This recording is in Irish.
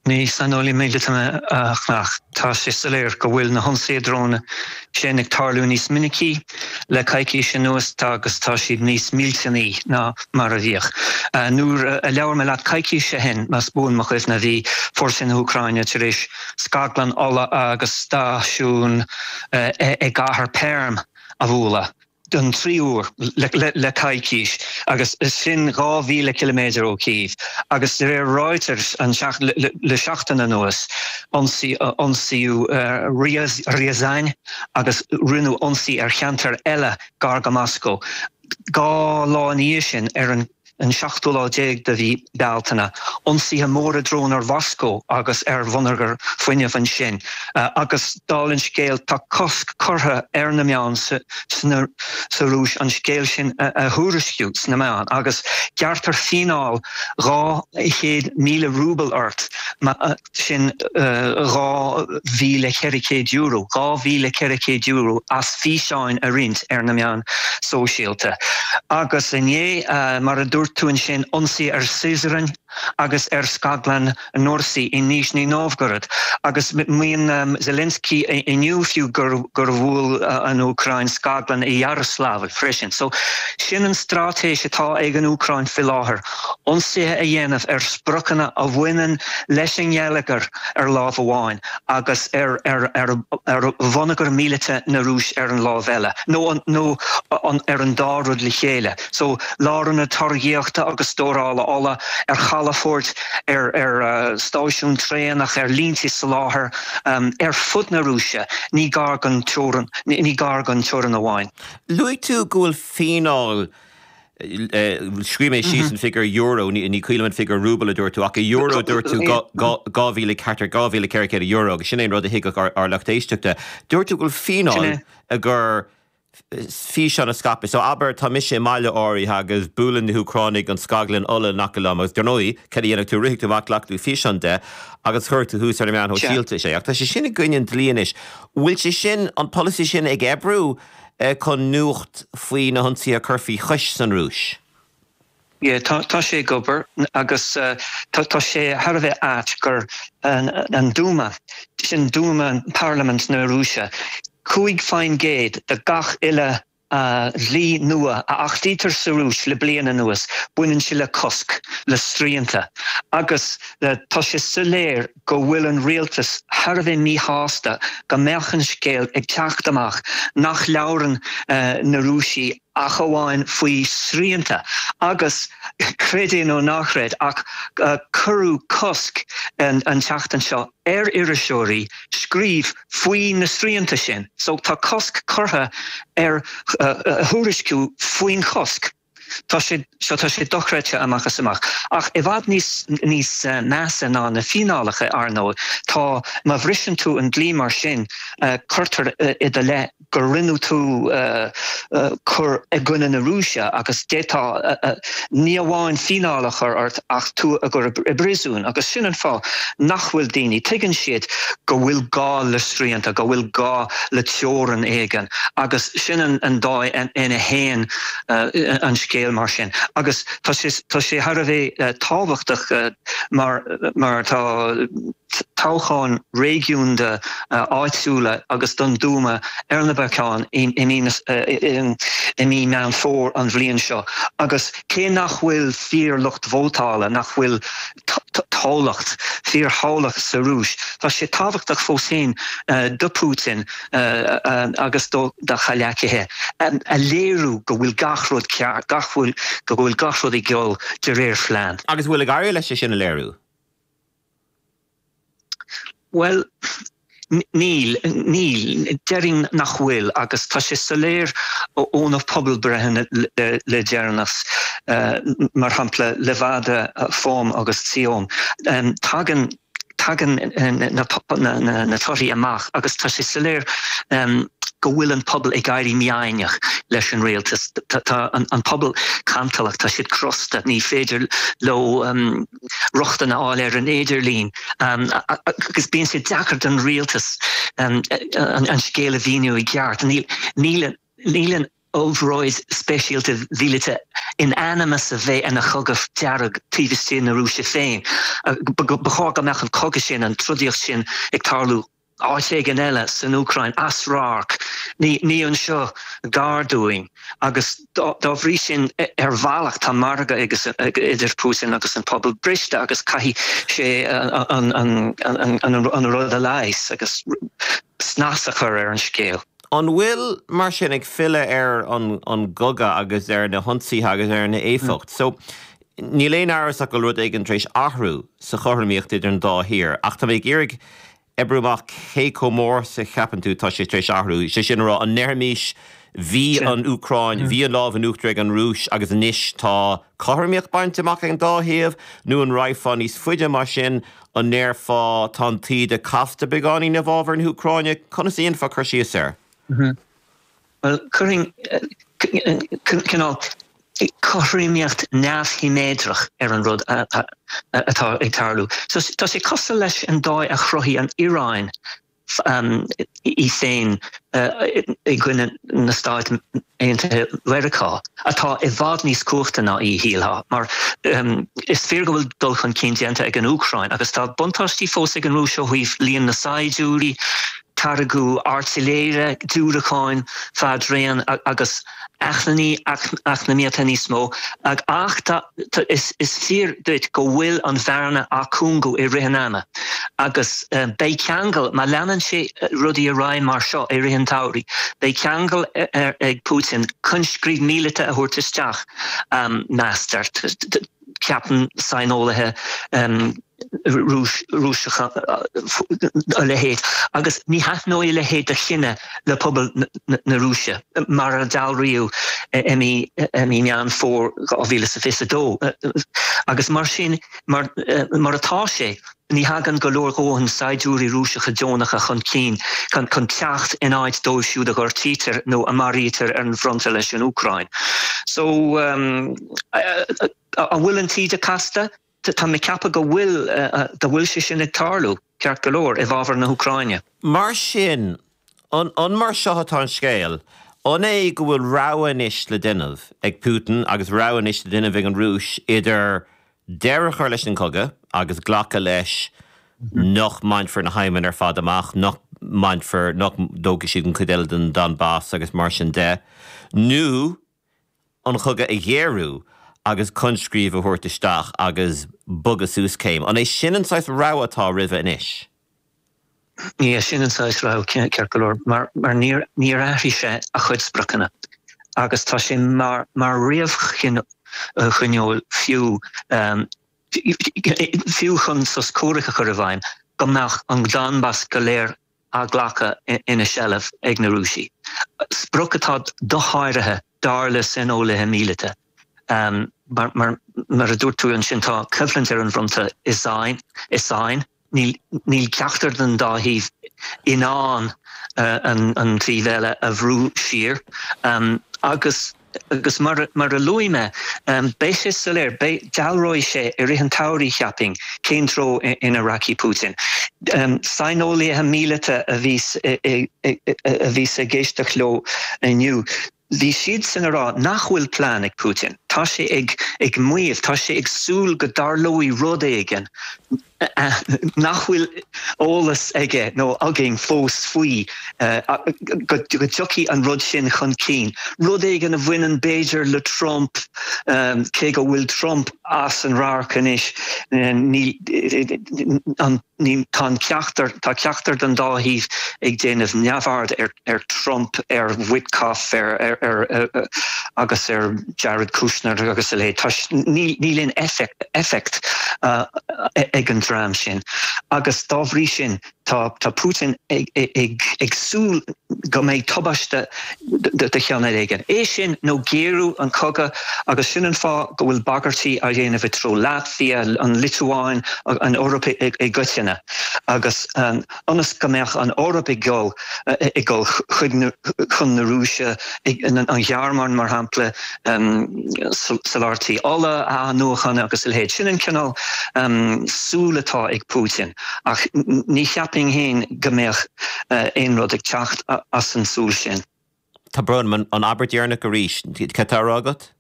Ní saineolaí míleata mé ach tá sé soiléir go bhfuil na hionsaithe dróin sin ag tarlú níos minicí le coicís anuas agus tá siad níos millteanaí ná mar a bhíodh. Nuair a labhair mé leat coicís ó shin, más buan mo chuimhne, bhí fórsaí na hÚcráine tar éis scaglann ola agus stáisiún i gcathair Perm a bhualadh. don tríú huair le coicís, agus sin dhá mhíle ciliméadar ó Chív, agus de réir Reuters le seachtain anuas, ionsaíodh Ryazan agus rinneadh ionsaí ar cheantair eile gar go Moscó dhá lá ina dhiaidh sin ar an an seachtú lá déag de mhí Bealtaine, ionsaithe móra drón ar Mhoscó agus ar bhonneagar fuinnimh ansin, agus dála an scéil, tá cosc curtha ar na meáin sa Rúis an scéal sin a thuairisciú sna meáin, agus gearrtar fíneáil dhá chéad míle rúbal ort má sin €2,400, €2,400 as físeáin a roinnt ar na meáin sóisialta. Agus inné, mar a dúirt tú ansin, ionsaí ar Syzran agus ar scaglann Nursi i Nizhny Novgorod. Agus maíonn Zelensky inniu fiú gur bhuail an Úcráin scaglann i Yaroslavl freisin. So sin an straitéis atá ag an Úcráin faoi láthair. ionsaithe a dhéanamh ar spriocanna a bhaineann leis an ngeilleagar ar lámh amháin agus ar ar bhonneagar míleata na Rúise ar an lámh eile, nó nó ar an dá rud le chéile, so lárionaid táirgíochta agus stórála ola, ar chalafoirt, ar ar stáisiúin traenach, ar línte soláthair ar fud na Rúise, ní gar don teorainn, ní gar don teorainn amháin. Luaigh tú go bhfuil fíneáil Scríobh mé síos an figiúr euro, ní cuimhin liom an figiúr rúbal a dúirt tú, ach i euro dúirt tú dhá mhíle ceathair, dhá mhíle ceithre chéad euro agus sin an rud a thuigfeadh ár lucht éisteachta. Dúirt tú go bhfuil fíneáil ar fhíseán a scaipeadh. So abair tá mise i mbaile áirithe agus buaileann na hÚcránaigh an scaglann ola in aice liom agus dar ndóigh cad a dhéanfaidh tú, rithfidh tú amach, glacfaidh tú físeán de agus chuirfidh tú thuas ar na meáin shóisialta é. Ach tá sé sin i gcoinne an dlí anois. An bhfuil sé sin, an polasaí sin ag oibriú? chun nuacht faoi na hionsaithe a chur faoi chois san Rúis. Yeah, tá, tá sé ag obair agus tá sé thar a bheith ait gur an, an Dúma, sin Dúma, Parlaimint na Rúise, cúig faoin gcéad de gach uile dhlí nua a achtaítear sa Rúis le bliain anuas, baineann sé le cosc, le srianta agus tá sé soiléir, go bhfuil an rialtas thar a bheith míshásta go mbeadh an scéal ag teacht amach nach labhrann na Rúisigh ach amháin faoi srianta agus, creid é nó ná chreid ach cuireadh cosc an tseachtain seo ar iriseoirí scríobh faoi na srianta sin, so tá cosc curtha ar thuairisciú faoin chosc. Tá, tá sé dochreidte amach is amach. Ach i bhfad níos níos measa ná na fíneálacha, ar ndóigh, tá, má bhriseann tú an dlí mar sin, cuirtear i do leith go rinne tú cur i gcoinne na Rúise agus d'fhéadfaí ní amháin fíneáil a chur ort ach tú a chur i bpríosún. Agus sin an fáth nach bhfuil daoine, tuigeann siad go bhfuil gá le srianta, go bhfuil gá le teorainn éigin agus sin an dóigh ina bhfuil, an scéal mar sin agus tá sé tá sé thar a bheith tábhachtach mar mar tá toghcháin réigiúnda áitiúla agus don Dúma ar na bacáin in in in i mí Meán Fómhair an bhliain seo agus cé nach bhfuil fíor lucht vótála nach bhfuil toghlacht fíorthoghlacht sa Rúis tá sé tábhachtach fós féin do Putin agus do do chomhghleacaithe a léiriú go bhfuil gach rud ceart, go bhfuil gach rud ag dul de réir phlean. Agus an bhfuil ag éirí leis é sin a léiriú? Bhuel, níl. Níl. Déarfainn nach bhfuil agus tá sé soiléir ó na pobalbhreitheanna le deireanas, mar shampla Levada, FOM agus VTsIOM, tagann Tagann na torthaí amach agus tá sé soiléir go bhfuil an pobal ag éirí mífhoighneach leis an rialtas. Tá an pobal cantalach, tá siad crosta, ní féidir leo rochtain a fháil ar an idirlíon agus bíonn sé deacair don rialtas an scéal a mhíniú i gceart. Níl. Níl an obráid speisialta mhíleata in ainm is a bheith ina chogadh dearg taobh istigh na Rúise féin. Ba chóir go mbeadh an cogadh sin, an trodaíocht sin ag tarlú áit éigin eile, san Úcráin, as radharc, ní anseo gar dúinn. Agus dá bhrí sin, ar bhealach, tá margadh idir Putin agus an pobal briste agus caithfidh sé an rud a leigheas. snas a chur ar an scéal. An bhfuil, mar sin, ag filleadh ar an gcogadh agus ar na hionsaithe agus ar an éifeacht so, níl aon amhras ach go bhfuil rud éigin tar éis athrú sa chothromaíocht idir an dá thaobh, ach tá mé ag iarraidh oibriú amach cé chomh mór is a cheapann tú atá sé tar éis athrú, is é sin a rá, an ndéarfaimis bhí an Úcráin, bhí an lámh in uachtar ag an Rúis agus anois tá cothromaíocht bainte amach ag an dá thaobh, nó an raghfá níos faide mar sin, An ndéarfá, tá an taoide casta beagáinín i bhfábhar na hÚcráine? Conas a dhéanfá cur síos air? Bhuel, chuirfinn cineál cothromaíocht neamhshiméadrach ar an rud atá ag tarlú. Tá sé cosúil leis an dóigh a chruthaigh an Iaráin í féin i gcoinne na Stáit Aontaithe Mheiriceá, atá i bhfad níos cumhachta ná í, shílfeá, mar is fíor go bhfuil dul chun cinn déanta ag an Úcráin, agus tá buntáistí fós ag an Rúis ó thaobh líon na saighdiúirí, táirgeadh airtléire, diúracáin fadraon agus. acmhainní eacnamaíochta níos mó ach tá is fíor duit go bhfuil an bhearna á cúngú i rith an ama agus beidh ceangal, má leanann sé rudaí ar aghaidh mar seo i rith an tsamhraidh, beidh ceangal ag Putin coinscríobh míleata a thabhairt isteach, meastar, ceapann saineolaithe. Rúiseacha a leithéid, agus ní thaitneoidh a leithéid de chinneadh le pobal na Rúise, mar a dealraíodh i mí Meán Fómhair 2022. Agus mar sin, mar atá sé, ní thagann go leor dhóthain saighdiúirí Rúiseacha deonacha chun cinn chun teacht in áit dóibh siúd a ghortaítear nó a mharaítear ar an bhfronta leis an Úcráin. So, an bhfuil an taoide casta? Tá mé ag ceapadh go bhfuil, go bhfuil sé sin ag tarlú, ceart go leor, i bhfabhar na hÚcráine. Mar sin, an, an mar seo atá an scéal, an é go bhfuil rogha anois le déanamh ag Putin agus rogha anois le déanamh ag an Rúis idir deireadh a chur leis an gcogadh agus glacadh leis nach mbainfear na haidhmeanna ar fad amach, nach mbainfear, nach dtógfaidh siad an chuid eile den Donbas agus mar sin de, nó. an cogadh a ghéarú agus coinscríobh a thabhairt isteach agus bogadh suas céim. An é sin an saghas rogha atá roimhe anois? Is é sin an saghas rogha, ceart go leor, mar níor athraigh sé a chuid spriocanna agus tá sé mar réamhchoinníoll fiú, fiú chun sos comhraic a chur i bhfeidhm, go mbeadh an Donbas go léir á ghlacadh ina seilbh ag na Rúisigh, sprioc atá dosháraithe dar le saineolaithe míleata. Mar a dúirt tú ansin, tá coimhlint ar an bhfronta i sáinn, níl ceachtar den dá thaobh in ann an taobh eile a bhrú siar agus, Agus mar a luaigh mé, beidh sé soiléir, dealróidh sé i rith an tsamhraidh, cheapfainn, cén treo ina rachaidh Putin. Saineolaithe míleata a bhíos ag éisteacht leo inniu, bhí siadsan a rá nach bhfuil plean ag Putin, tá sé ag maíomh, tá sé ag súil go dtarlóidh rud éigin, nach bhfuil eolas aige nó againn fós faoi, go dtiocfaidh an rud sin chun cinn. Rud éigin a bhaineann b'fhéidir le Trump, cé go bhfuil Trump as an radharc anois, tá ceachtar ceachtar den dá thaobh ag déanamh neamhaird air. ar Trump, ar Witkoff ar agus ar Jared Kushner agus a leithéid. Toisc níl aon éifeacht ag an dream sin agus dá bhrí sin tá Putin ag súil go mbeidh tubaiste de chineál éigin. É sin nó géarú an cogadh agus sin an fáth go bhfuil bagairtí á dhéanamh i dtreo Latvia, an Liotuáin, an Eoraip i gcoitinne agus ionas go mbeadh an Eoraip ag dul ag dul chuig chun na Rúise, an Ghearmáin mar shampla, soláthairtí ola a athnuachan agus a leithéid. Sin an cineál súil atá ag Putin ach ní cheapfainn féin go mbeadh aon rud ag teacht as an tsúil sin. Tá brón orm, an abairt dheireanach arís, cad tá á rá agat?